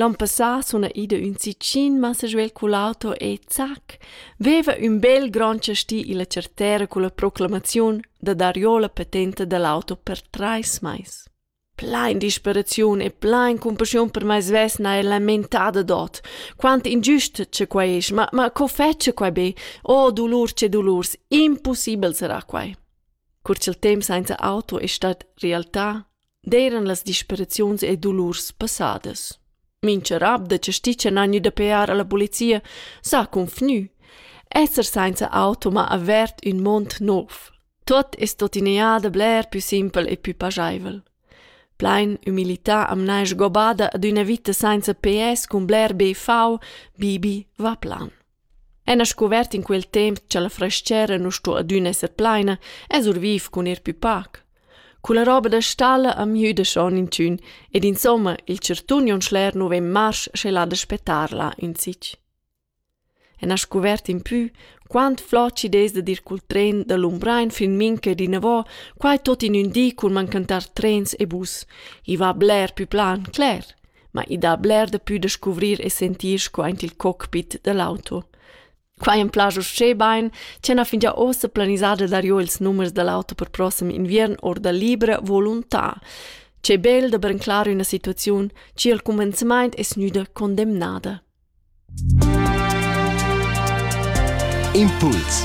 L'an passà suna ida ün sitgin massa giu el cull'auto e zac, veva ün bel grand chasti illa chartera culla proclamaziun da darjò la patenta da l'auto per trais mais. Plain disperaziun e plain cumpaschiun per mai svesna e lamentada dot. Quant ingiust che quai es, ma, ma co fece quai be? Oh dolur che dolurs, impossibel sarà quai. Cur ch'il temp senza auto è stat realtà, d'eiran las disperaziuns e dolurs passadas. Mincha rab da chasticha n'ha gnü da pear a la polizia s'ha confgnü. Esser sainza auto m'ha avert ün mond nouv. Tuot es tuottina da bler pü simpel e pü pajaivel. Plain umilità am n'ha sgobada ad üna vita sainza PS cun bler BV, Bibi va plan. Ena scuvert in quel temp cha la frastgera nu sto adüna esser plaina, es our viv cun ir pü pac. Culla roba da stalla am gnüda schon inchün ed insomma il chartun on schler nu vegn marsch sche là da spettar là insich. Ena scuvert in pü, quant flot chi'd es dad ir cul tren da Lumbrain fin mincha di inavò, quai tot in ün di cun mancantar trens e bus. I va bler pü plan, cler. ma i dà bler dapü da scuvrir e sentir sco aint il cockpit da l'auto. Quai am plascha uschè bain ch'ella fingia uossa planisada darcho ils numers da l'auto per prossem inviern our da libra volontà. Che bel da branclar üna situaziun chi al cumenzamaint es gnüda condemnada. Impuls